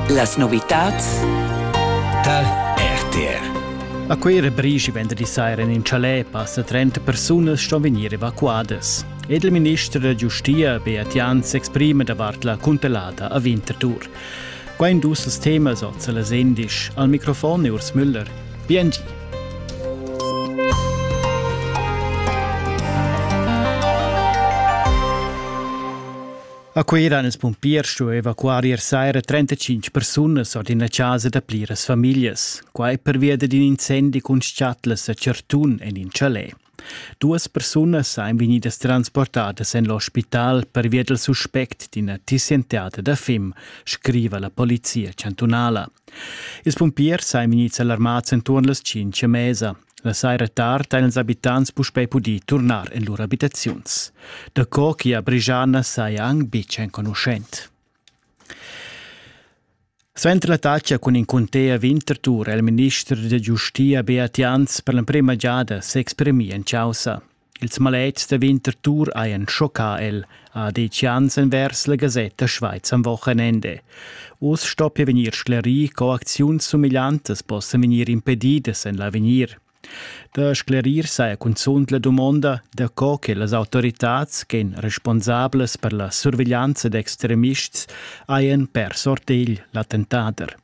Las novitads dal RTR A Cuira brigi venderdi saira in chalet passa 30 persunas ston vegnir evacuadas. Ed il minister da giustia Beat Jan s'exprima davart la cuntelada a Winterthur. Qua in dus temas oz la Sendisch. Al microfon è Urs Müller. BNG. A Cuira han ils pumpiers stuì evacuar ier saira 35 persunas ord ina chasa da pliras famiglias. Quai pervia d'in incendi cun schatlas a Certun en in chalet. Duas persunas ein vegnidas transportadas en l'ospital pervia dal suspect d'ina tissienteata da fim, scriva la polizia chantunala. Ils pumpiers ein vegnids alarmads entuorn las 5 a mesa. La saira tard han ils abitants puspei pudì turnar en lur abitaziuns. Daco che a Brigiana saja anc betg enconuschent. Suenter la taccia cun in cunter Winterthur è il minister da giustia Beat Jans per l'emprima giada s'exprimì en chaussa. Ils maletgs da Winter Tour hajan schoccà el, ha detg Jans envers la gasetta Schweiz am Wochenende. Uss stoppia vegnir sclerì, co acziuns sumegliantas possan vegnir impedidas en l'avegnir. Da sclerir saja cunzunt la dumonda da co che las autoritads ch'en responsablas per la surveglianza d'extremists hajan pers ortegl l'attentader.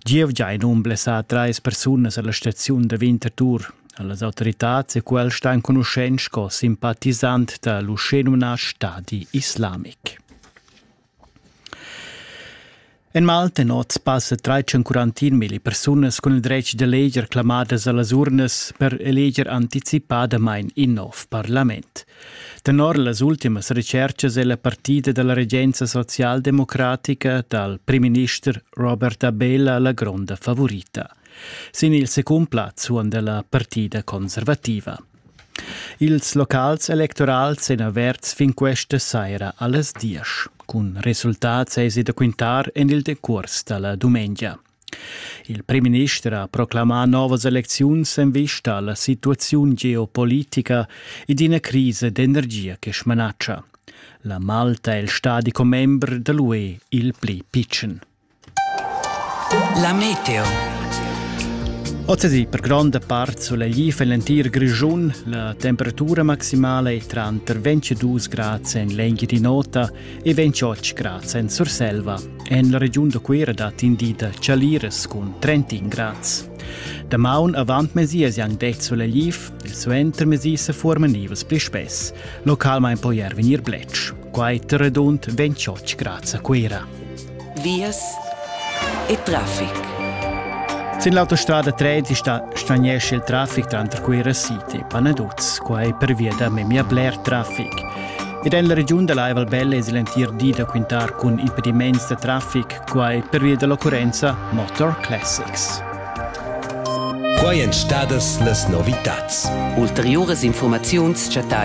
Gievgia ein um blessà treis persunas alla staziun da Winterthur. Las autoritads e quels stan conuschent sco simpatisant da l'uschenumnà Stadi islamic. En Malta noz passa 341 mila persunas cun il dretg da leger clamadas a las urnas per eleger anticipadamain in nov parlament. Tenor las ultimas retscherchas è la partida da la regenza socialdemocratica dal primminister Robert Abela la gronda favorita. Sin il secund plaz suonda la partida conservativa. Ils locals electorals èn averts fin questa saira a las 10. Cun resultats èsi da quintar en il decurs da la dumengia. Il primminister ha proclamà novas elecziuns en vista a la situaziun geopolitica ed ina crisa d'energia che smanatscha. La Malta è il stadi commember da l'UE il pli pitschen. La meteo. Oz per gronda part solegliv en l'entir Grischun. La temperatura maximala è tranter 22 grad en l'enghia di nota e vegn chotsch grads en Surselva. En la regiun da Cuira dat in di da chaliras cun 30 grads. Damaun avant mesi es yang det sulegliv e suenter mesi se forman nivels pli spess. Localmain po er vegnir bletsch. Quai redund 28 grads a Cuira. vias e traffic. Sin l'autostrada 13 sta straniesce il traffic tranter Cuira City e Panaduz, quai pervia da memia bler traffic. Ed en la regiun da l'Aival Belle es l'entir di da quintar cun impediments da traffic, quai pervia dall'occurrenza Motor Classics. Quai èn stadas las novitads. Ulteriuras informaziuns chattai